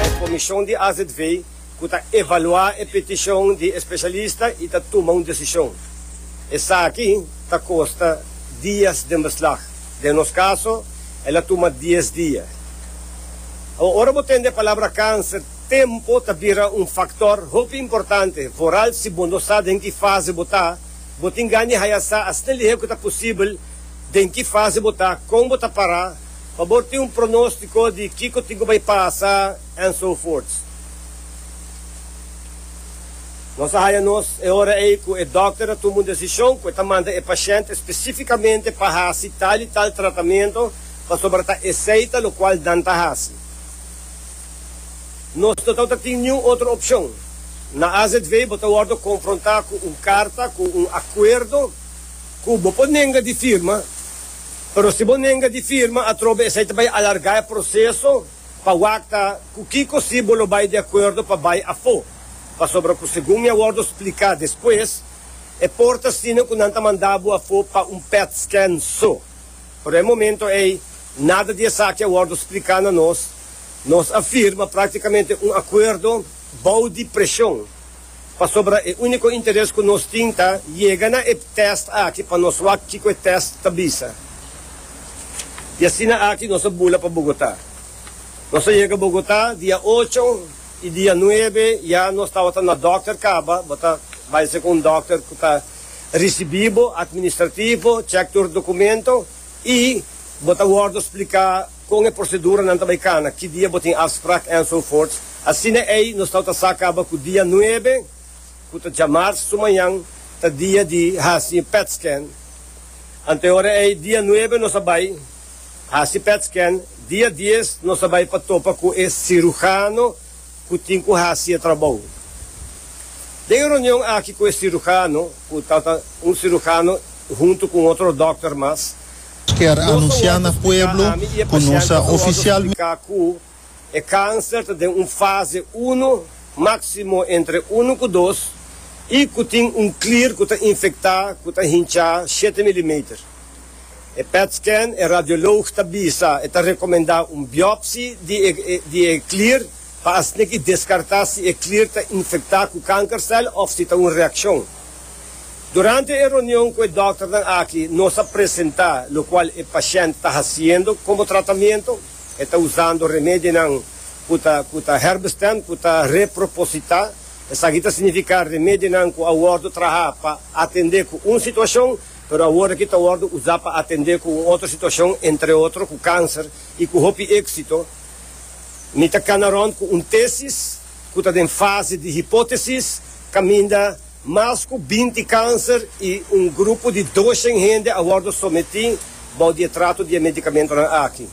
E Komishon di AZV ku ta evaluá e petishon di e spesialista i ta tuma un desishon. Esaki ta kosta dias den beslag. Den nos kaso, el a tuma dies dia. Ora bo tende e palabra kanser, tempu ta bira un faktor hopi importante. Vooral si bo no sa den ki fase bo ta, bo tin gana di haya sa asina lihé ku ta posibel den ki fase bo ta, kon bo ta pará, pa bo tin un pronóstiko di kiko tin ku bai pasa and so forth. Nos a haña nos e ora ei ku e dòkter a tuma un desishon ku e ta manda e pashènt espesífikamente pa hasi tal i tal tratamentu pasobra ta esei ta lokual nan ta hasi. Nos no tabata tin niun otro opshon. Na AZV bo ta wòrdu konfrontá ku un karta ku un akuerdo ku bo por nenga di firma. Pero si bo nenga di firma atrobe esei ta bai alarga e proseso pa wakta ku kiko si bo lo bai di akuerdo pa bai afó, pasobra ku segun mi a wòrdu spliká despues, e por ta asina ku nan ta manda bo afó pa un pèt-skèn so. Pero e momento ei nada di esaki a wòrdu spliká na nos, nos a firma praktikamente un akuerdo bou di preshon. pasobra e úniko interes ku nos tin ta yega na e tèst aki pa nos wak kiko e tèst ta bisa. I asina aki nos a bula pa Bogotá. Nos a yega Bogotá dia ocho i dia nuebe ya nos tabata na dòkter kaba, bo ta bai segun un dòkter ku ta risibí bo, atministrativo, chèk tur dokumento i bo ta wòrdu spliká. Kon e proseduranan ta bai kana, ki dia bo tin afsprak enzovoorts. Asina ei nos tawata sa kaba ku dia nuebe, ku ta djamars sumañan, ta dia di hasi petscan. Anto e ora ei, dia nuebe nos a bai hasi petscan, dia dies nos a bai pa topa ku e sirujano ku tin ku hasi e trabou. Den e reunion aki ku e sirujano, ku tawata un sirujano huntu ku un otro dòkter mas, Kier anunciá na pueblo cu nos a oficialmente. Explica cu e cancer ta den un fase uno, maximo entre uno cu dos, y cu tin un clear cu ta infectá cu ta hinchá shete milimeter. E pet scan, e radiolog ta bisa e ta recomendá un biopsy di e clear pa asina ki descartá si e clear ta infectá cu cancercel of si ta un reaccion. Durante e reunion cu e dokternan aki nos a presenta locual e pashent ta haciendo como tratamiento, e ta usando remedionan cu ta cu ta herbestem cu ta reproposita, esaki ta significa remedionan cu a wordo traha pa atende cu un situacion pero awor aki ta wordo usa pa atende cu un otro situacion entre otro cu cancer y cu hopi exito. Mi ta cana rond cu un tesis cu ta den fase di hipotesis caminda. Mas ku binti kanser i un grupo di doshen hende a wòrdu sometí bou di e trato di e medikamentunan aki.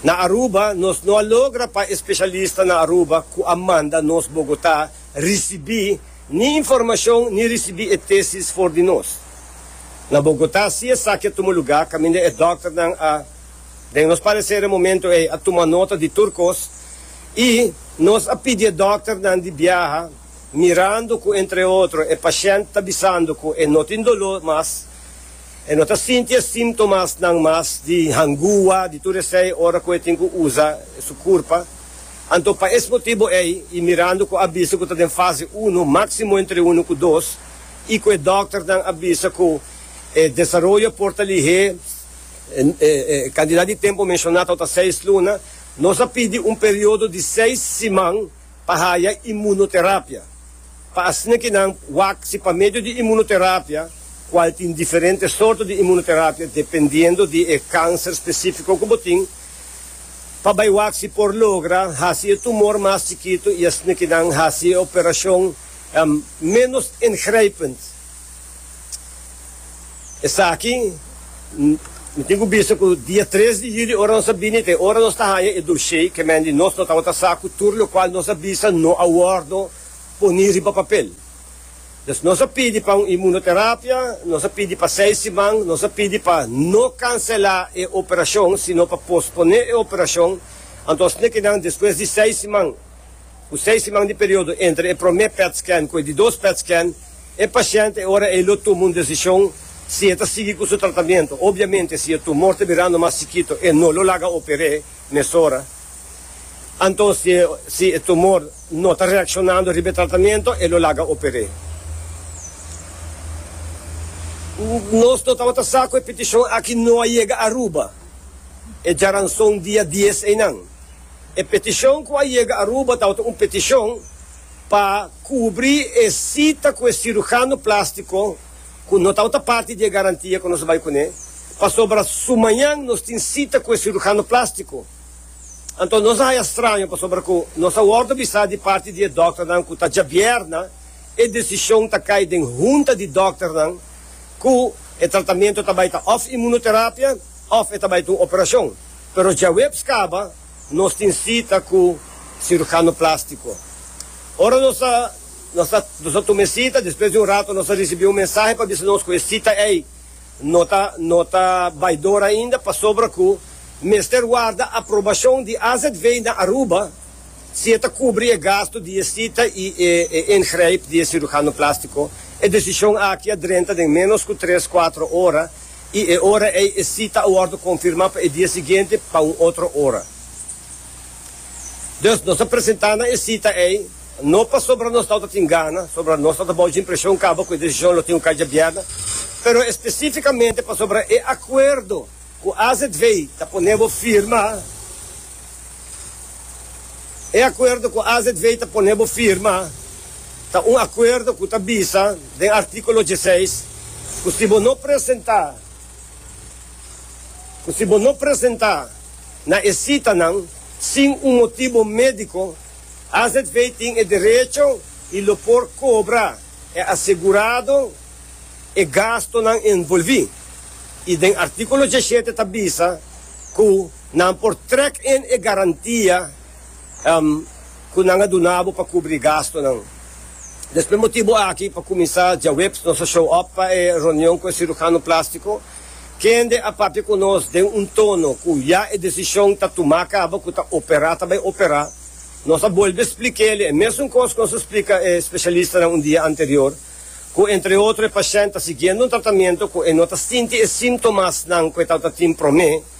Na Aruba, nos no a logra pa e spesialista na Aruba ku a manda nos Bogotá risibí ni informashon ni risibí e tesis for di nos. Na Bogotá si esaki a tuma lugá kaminda e dòkternan a, den nos pareser e momentu ei, a tuma nota di tur kos i nos a pidi e dòkternan di biaha Mirando cu entre otro e pashent ta bisando cu e no tin dolo mas, e no ta sinti e sintomasnan mas di hangua, di tur esey ora cu e tin cu usa su curpa. Anto pa es motibo ey y mirando cu a bisa cu ta den fase uno, maximo entre uno cu dos, y cu e dokternan a bisa cu e desaroyo por ta lihé e cantidad di tempo menshoná tawata seis luna, nos a pidi un periodo di seis siman, pa haya imunoterapia pa asina ki nan wak si pa medio di imunoterapia, kual tin diferente sorto di imunoterapia dependiendo di e kanser spesifiko ku bo tin, pa bai wak si por logra hasi e tumor mas chikitu i asina ki nan hasi e operashon menos ingrijpend. Esaki mi tin ku bisa ku dia tres di yuli ora nos a bini ta e ora nos ta haña e doshé ke men di nos no tabata sa ku tur lokual nos a bisa no a wòrdu poni riba papel. Pues nos a pidi pa un imunoterapia, nos a pidi pa seis siman, nos a pidi pa no kanselá e operashon sino pa posponé e operashon, anto asina ke nan despues di seis siman, Ku seis siman di periodo entre e promé pet scan ku e di dos pet scan, e pashènt e ora ei lo tuma un desishon si e ta sigui ku su tratamentu. Obiamente si e tumor ta birando mas chikito e no lo laga oper'é mesora. Anto si e si e tumor no ta reakshonando riba e tratamentu e lo laga oper'é. Nos no tabata sa ku e petishon aki no a yega Aruba e djaranson dia dies einan. E peticion cu a yega Aruba tawata un peticion pa cubri e cita cu e cirujano plastico cu no tawata parti di e garantia cu nos a bay cune, pasobra sumañan nos tin cita cu e cirujano plastico. Anto nos a haya straño pasobra cu nos a wordo bisa di parti di e dokternan cu ta djabierna e decision ta cay den hunta di dokternan cu e tratamento ta bay ta of inmunoterapia of e ta bay ta un operacion. Pero djaweps kaba nos tin sita ku sirujano plástiko. Ora nos a nos a nos a tuma e sita, despues di un rato nos a risibí un mensahe pa bisa nos ku e sita ei no ta no ta bai dor ainda pasobra ku mester warda aprobashon di AZV na Aruba si e ta kubri e gastu di e sita i e e ingrijp di e sirujano plástiko. E desishon aki a drenta den ménos ku tres, kuatro ora i e ora ei e sita a wòrdu konfirmá pa e dia siguiente pa un otro ora. Dus nos a presentá na e sita ei, no pasobra nos tawata tin gana, sobra nos tawata bou djimpreshon kaba ku e desishon lo tin un kai djabièrna, pero espesífikamente pasobra e akuerdo ku AZV ta pone bo firma, e akuerdo ku AZV ta pone bo firma. Ta un akuerdo ku ta bisa den artíkulo dieseis ku si bo no presentá ku si bo no presentá na e sitanan sin un motibu médiko, azv tin e derecho i lo por kobra e asegurado e gastonan envolví. I den artíkulo diesshete ta bisa ku nan por trèk en e garantia. ku nan a duna bo pa kubri gastunan. Nos p'e motibu aki pa kuminsá djaweps nos a show up pa e reunion ku e sirujano plástiko. Kende a papia ku nos den un tono ku ya e desishon ta tumá kaba ku ta operá ta bai operá, nos a bolbe splik'é-l e mesun kos ku nos a splika e speshalistanan un dia anterior, ku entre otro e pashènt ta siguiendo un tratamentu ku e no ta sinti e síntomasnan ku e tabata tin promé.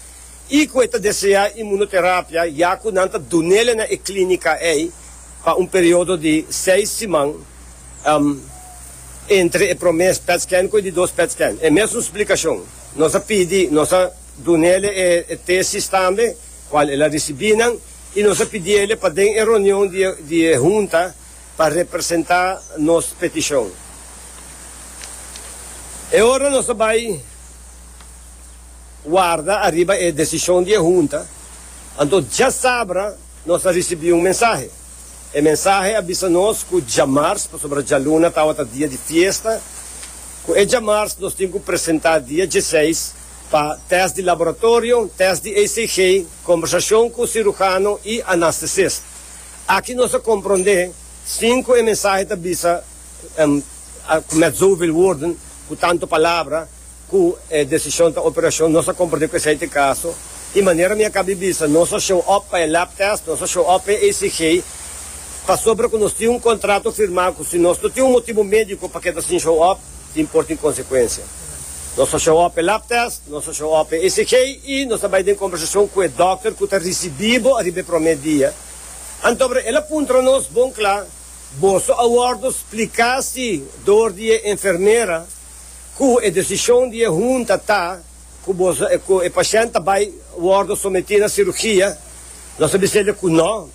i ku e ta deseá imunoterapia ya ku nan ta dun'el na e klínika ei pa un periodo di seis siman entre e promé petscan ku e di dos petscan. E mesun splikashon nos a pidi, nos a dun'el e tesis tambe kual el a risibí nan i nos a pidi el pa den e reunion di e hunta pa representá nos petishon. E ora nos a bai. warda ariba e desishon di e hunta, anto djasabra nos a risibí un mensahe. E mensahe a bisa nos ku djamars, pasobra djaluna tabata dia di fiesta, ku e djamars nos tin ku presentá dia dieseis pa tèst di laboratorio, tèst di ECG, kombersashon ku sirujano i anastesist. Aki nos a komprondé sin ku e mensahe ta bisa ku mèt zoveel woorden, ku tantu palabra, Cu e decision ta operacion, nos a comparti cu esey t'e caso. Y manera mi a caba di bisa, nos a show up pa e lab test, nos a show up pa e ECG, pasobra cu nos tin un contrato firma cu si nos no tin un motibo medico pa keda sin show up, tin por tin consecuencia. Nos a show up p'e lab test, nos a show up p'e ECG y nos a bay den conversacion cu e dokter cu ta ricibi bo ariba e prome dia. Antobra el a puntra nos bon cla, Boso a wordo splica si door di e enfermera? ku e desishon di e hunta ta ku boso ku e pashènt ta bai wòrdu sometí na sirugia, nos a bisa el'e ku nò,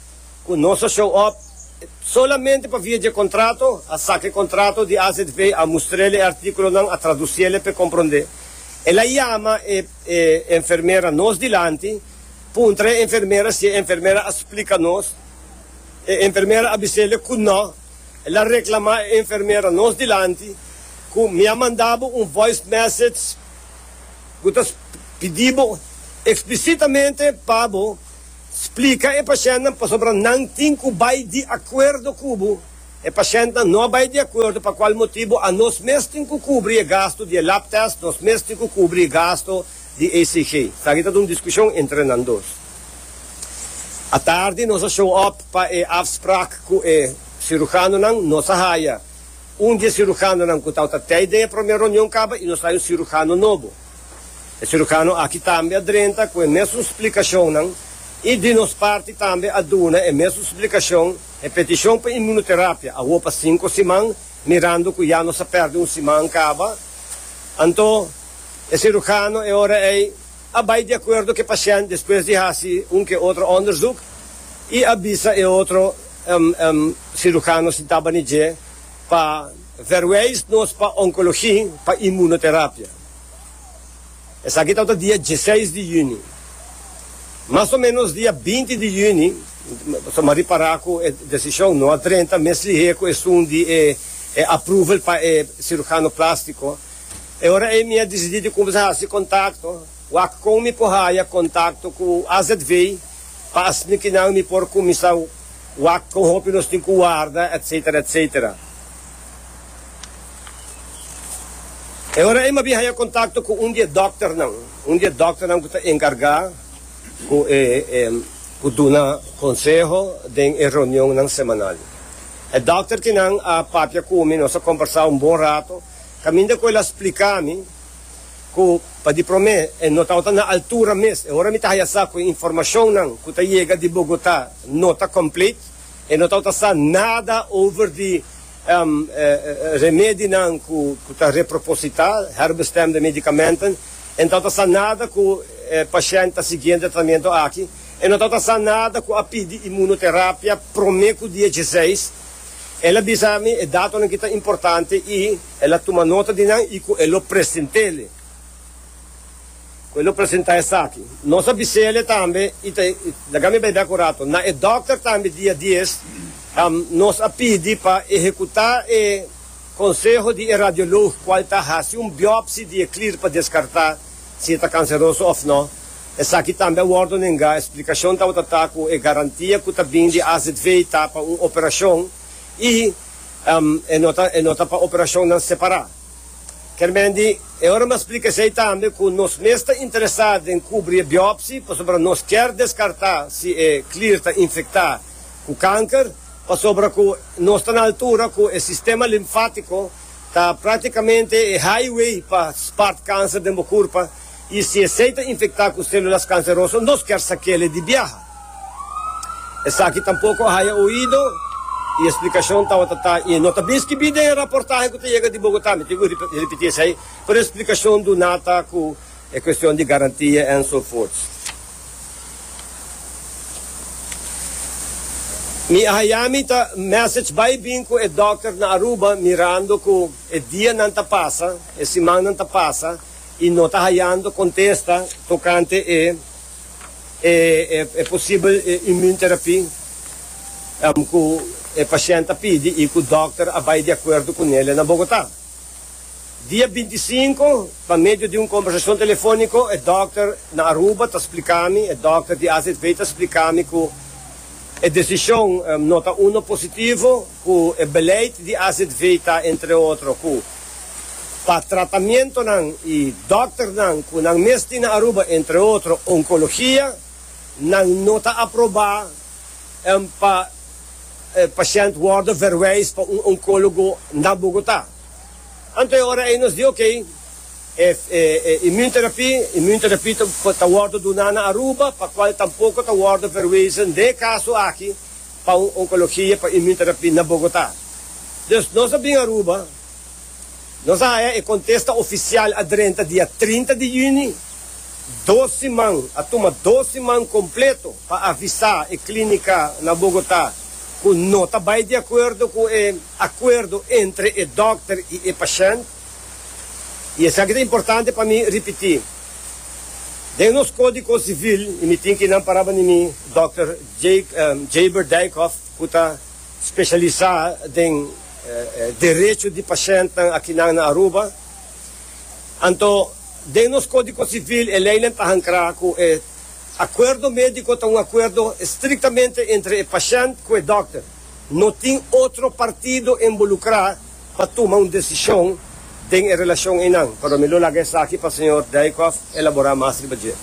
ku nos a show up solamente pa via dje kontrato, a saka e kontrato di AZV, a mustra el e artíkulonan, a tradusí el e p'e komprondé. El a yama e e enfermera nos dilanti, puntra e enfermera si e enfermera a splika nos, e enfermera a bisa el'e ku nò. El a reklamá e enfermera nos dilanti ku, Mi a manda bo un voice message ku ta pidi bo eksplisitamente pa bo splika e pashèntnan pasobra nan tin ku bai di akuerdo ku bo. E pashèntnan no a bai di akuerdo pa kual motibu anos mes tin ku kubri e gastu di e lab tèst, nos mes tin ku kubri e gastu di ECG. Esaki ta ta un diskushon entre nan dos. Atardi nos a show up pa e afspraak ku e sirujanonan. Nos a haya un di e sirujanonan ku tabata tei den e promé reunion kaba i nos haya un sirujano nobo. E sirujano aki tambe a drenta ku e mesun splikashonnan i di nos parti tambe a duna e mesun splikashon, e petishon pa inmunoterapia awor pa sinku siman, mirando ku ya nos a pèrdè un siman kaba. Anto e sirujano e ora ei. a bai di acuerdo cu e paciente despues di haci un ke otro onderzoek y a bisa e otro cirujano si tabani dje pa verwijs nos pa oncologie pa inmunoterapia. Esaki tabata dia dieseis di juni. Mas o menos dia binti di juni so mari para cu e decision, no a drenta mes lihe cu esun di e approval pa e cirujano plastico. E ora ei mi a disidí di kumsa hasi kontakto. Wak kon mi por haya kontakto ku AZV pa asnikinan mi por kuminsá wak kon hopi nos tin ku warda, etsetera, etsetera. E ora ei mi a bin haya kontakto ku un di e dòkternan, un di e dòkternan ku ta enkargá ku e ku duna konseho den e reunionnan semanal. E dòkterkinan a papia ku mi, nos a kombersá un bon rato. Caminda cu el a splica mi cu pa di prome e no tabata na altura mes. E ora mi ta haya sa cu e informacionnan cu ta yega di Bogota no ta complete, e no tabata sa nada over di remedinan cu ta reproposita, herbestemde medicamenten, e no tabata sa nada cu e pashent ta siguiendo e tratamiento aki, e no tabata sa nada cu a pidi imunoterapia prome cu dia dieseis. El a bisa mi e datonan ki ta importante i el a tuma nota di nan i ku e lo present'el, ku e lo presenta esaki. Nos a bisele tambe i ta laga mi bai bek un rato. Na e dòkter tambe dia dies nos a pidi pa ehekutá e konseho di e radiolog kual ta hasi un biòpsi di e klir pa deskartá si e ta kanseroso òf nò. Esaki tambe a wòrdu nengá. E splikashon tabata ta ku e garantia ku ta bin di azv ta pa un operashon i e no ta e no ta pa operashonnan separá. Kermendi e ora mi a splika esei tambe ku nos mes ta interesá den kubri e biòpsi pasobra nos kier deskartá si e klier ta infektá ku kanker pasobra ku nos ta na altura ku e sistema limfátiko ta praktikamente e highway pa spart kanser den bo kurpa. I si esei ta infektá ku sélulas kanseroso, nos kèr sakéle di biaha. Esaki tampoko a haya oido i e splikashon tawata ta i no ta bin skibí den e raportahe ku ta yega di Bogotá. Mi tin ku ripití esei, pero e splikashon duná ta ku e kuestion di garantia èn so fort. Mi a haya mi ta mèsech bai bin ku e dòkter na Aruba mirando ku e dianan ta pasa, e simannan ta pasa, i no ta hayando contesta tocante e e posibel immuunterapie cu e pashent a pidi i cu dokter a bay di acuerdo cu Nelia na Bogota. Dia binti sinku, pa medio di un conversacion telefonico, e dokter na Aruba ta splica mi, e dokter di AZV ta splica mi cu e decision no ta uno positivo, Ku e beleid di AZV ta, entre otro, ku pa tratamentonan i dòkternan ku nan mes tin na Aruba, entre otro, onkologia, nan no ta aprobá pa e pashènt wòrdu verwèis pa un onkólogo na Bogotá. Anto e ora ei nos di, Oké, e imunterapí, immunterapie, ta wòrdu duná na Aruba, pa kual tampoko ta wòrdu verwezen den e kaso aki, Pa un onkologia pa imunterapia na Bogotá. Dus nos a bin Aruba, nos a haya e kontesta ofisial a drenta dia trinta di yüni, dos siman, a tuma dos siman kompleto pa avisá e klínika na Bogotá ku no ta bai di akuerdo ku e akuerdo entre e dòkter i e pashènt. I esaki ta importante pa mi ripití. Den nos kódiko sivil, i mi tin ki nan paraba di mi, dòkter Jaber Dijkhof ku ta speshalisá den derecho di pashèntnan akinan na Aruba, anto den nos kódiko sivil e leinan ta hankrá ku e akuerdo médiko ta un akuerdo estriktamente entre e pashènt ku e dòkter. no tin otro partido involucra pa tuma un decision den e relacion eynan. Pero mi lo laga esaki pa señor Dijkhoff elabora mas riba dje.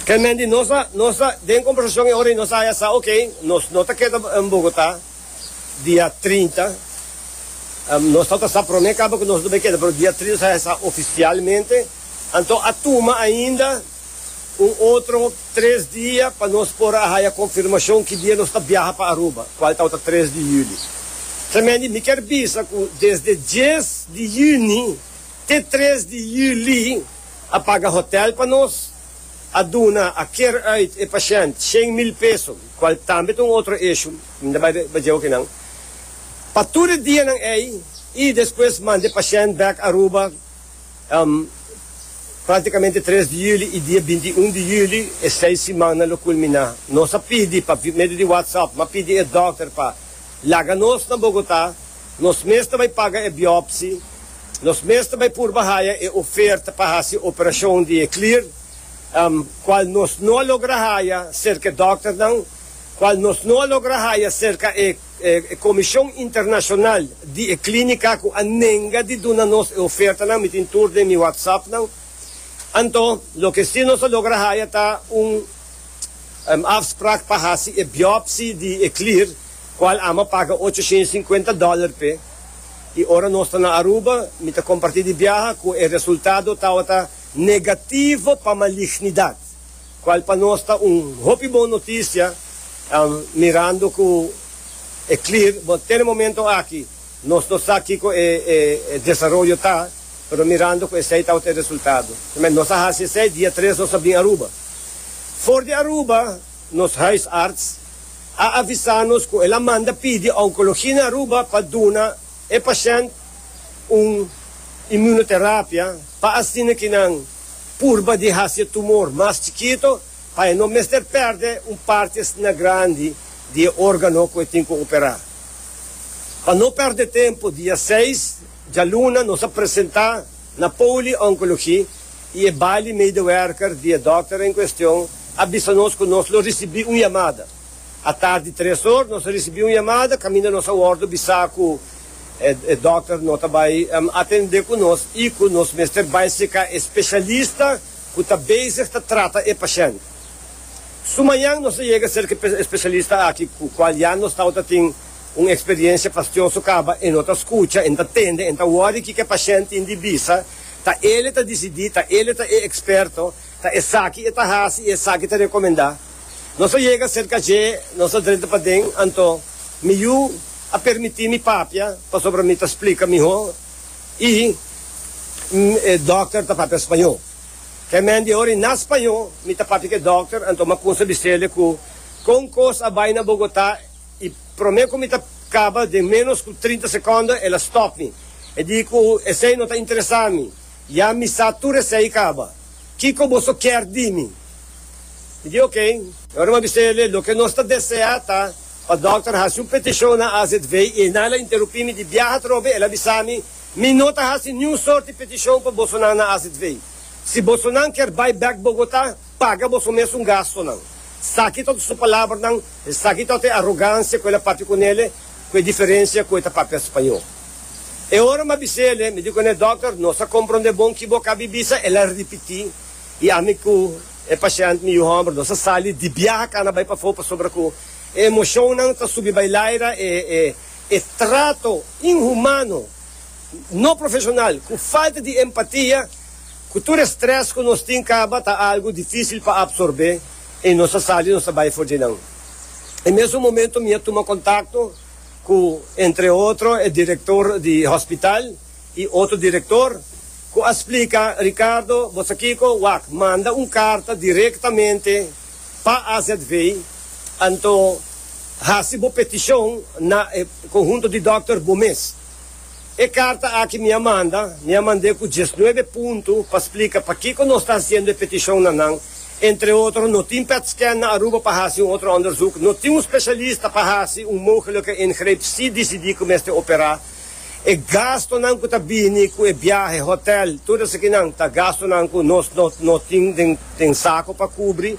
Kelman di nos a nos a den conversacion e ora y nos a haya sa ok, nos no ta keda Bogota dia trinta, nos tawata sa prome kaba cu nos no bay keda pero dia trinta nos a haya sa oficialmente, anto a tuma ainda. Un otro tres dia pa nos por a haya confirmacion ki dia nos ta biaha pa Aruba, cual tawata tres di juli. Tremendi, mi kier bisa cu desde dies di juni te tres di juli a paga hotel pa nos, a duna, a kier uit e pashent shen mil peso, cual tambe ta un otro issue, mi no bay bay djeo kinan, pa tur e dianan ey y despues manda e pashent back Aruba. Práktikamente tres di yüli i dia binti i un di yüli e seis simannan lo kulminá. Nos a pidi pa medio di WhatsApp, m'a pidi e dòkter pa laga nos na Bogotá. Nos mes ta bai paga e biòpsi, nos mes ta bai purba haya e oferta pa hasi operashon di e klir, kual nos no a logra haya serka e dòkternan, kual nos no a logra haya serka e. E Komishon Internashonal di e klínika ku a nenga di duna nos e ofertanan mi tin tur den mi whatsappnan. Anto loke sí nos a logra haya ta un afsprak pa hasi e biòpsi di e klir, kual ama paga ocho shien sinkuenta dòler p'e. I ora nos ta na Aruba, mi ta kompartí di biaha ku e resultado tabata negativo pa malichnidat. cual pa nos ta un hopi bon noticia, mirando cu e clear, but ten e momento aki nos no sa kico e desaroyo ta, pero mirando cu esey tabata e resultado. Promé, nos a haci esey, dia tres nos a bini Aruba. For di Aruba, nos huisarts a avisa nos cu el a manda pidi oncologie na Aruba pa duna e pashent un immunoterapia, pa asina kinan purba di hasi e tumor mas chikito pa e no mester pèrdè un parti asina grandi di e órgano ku e tin ku operá. Pa no pèrdè tempu, dia seis djaluna nos a presentá na Poly Oncology i e bali medewerker di e dòkter en kuestion a bisa nos ku nos lo risibí un yamada. Atar di tres or nos a ricibi un yamada caminda nos a wordo bisa cu e dokter no ta bay atende cu nos y cu nos mester bay seca e specialista cu ta bezig ta trata e pashent. Su mañan nos a yega cerca e specialista aki cu cual ya nos tawata tin un experiencia fastioso caba, e no ta scucha, e no ta tende, e no ta worry kico e pashent tin di bisa, ta ele ta dicidi, ta ele ta e experto, ta esaki e ta haci y esaki ta recomenda. Nos a yega serka dje, nos a drenta paden, anto mi yu a permiti mi papia pasobra mi ta splika mihó i e dòkter ta papia spañó. Ke mèn di ora i na spañó mi ta papia ke dòkter, anto mi a kunsa bisele ku kon kos a bai na Bogotá i promé ku mi ta kaba den ménos ku trinta sekònda el a stòp mi. E di ku esei no ta interesá mi, ya mi sa tur esei kaba. Kiko boso kèr di mi? I di oké. I ora m'a bisa el'e, loke nos ta deseá ta pa dòkter hasi un petishon na AZV i esnan el a interupí mi di biaha atrobe. El a bisa mi, Mi no ta hasi niun sort di petishon pa bosonan na AZV. Si bosonan kier bai bèk Bogotá, paga boso mes un gastonan. Esaki tabata su palabranan, esaki tabata e arogansia ku el a papia ku n'el'e, ku e diferensia ku e ta papia spañó. E ora m'a bisa el'e, mi di ku n'e, Dòkter, nos a komprondé bon ki bo kabi bisa, el a ripití. I ami ku e pashènt mi yu hòmber nos a sali di biaha kana bai pafó pasobra ku e emoshonnan ta subi bai laira, e e e trato inhumano, no profeshonal, ku falta di empatia ku tur e strès ku nos tin kaba ta algu difísil pa apsorbé i nos a sali nos a bai for dje nan. E mesun momentu mi a tuma kontakto ku entre otro e direktor di hospital. i otro direktor, ku a splika, Ricardo, bo sa kiko? Wak manda un karta direktamente pa AZV, anto hasi bo petishon na e konhunto di dòkter bo mes. E karta aki mi a manda, mi a mand'é ku diesnuebe puntu pa splika pakiko nos ta hasiendo e petishon na nan, entre otro, no tin pèt-skèn na Aruba pa hasi un otro òndersuk, no tin un spesialista pa hasi un mogelijke ingreep si disidí ku mester operá, E gastunan ku ta bini ku e biahe, hotel, tur esakínan ta gastunan ku nos no no tin den sako pa kubri.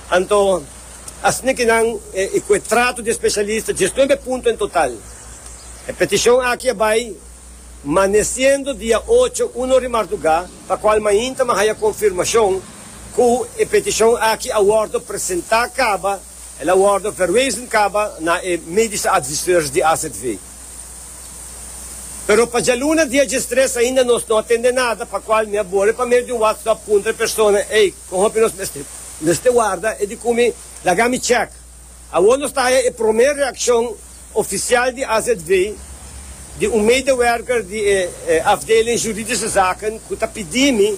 Anto asina ke nan i ku e tratu di e spesialista djes nuebe punto en total. E petishon aki a bai manesiendo dia ocho uno ri mardugá pa kual mainta m'a haya konfirmashon ku e petishon aki a wòrdu presentá kaba, el a wòrdu verwezen kaba na e medishi adviseurs di AZV. Pero pa djaluna dia djestres ainda nos no a tende nada, pa cual mi a boli pa medio di un whatsapp puntra e persona, ey, con hopi nos mester warda e di cu mi laga mi check? Awor nos ta haya e prome reaccion oficial di azv di un medewerker di e afdeling juridische zaken cu ta pidi mi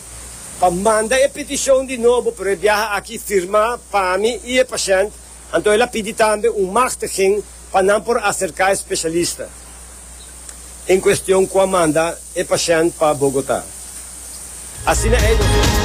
pa manda e peticion di nobo, pero e biaha aki firma pa mi y e patiënt. Anto el a pidi tambe un machtiging pa nan por acerca e specialista en cuestion cu a manda e pashent pa Bogota. Asina ei.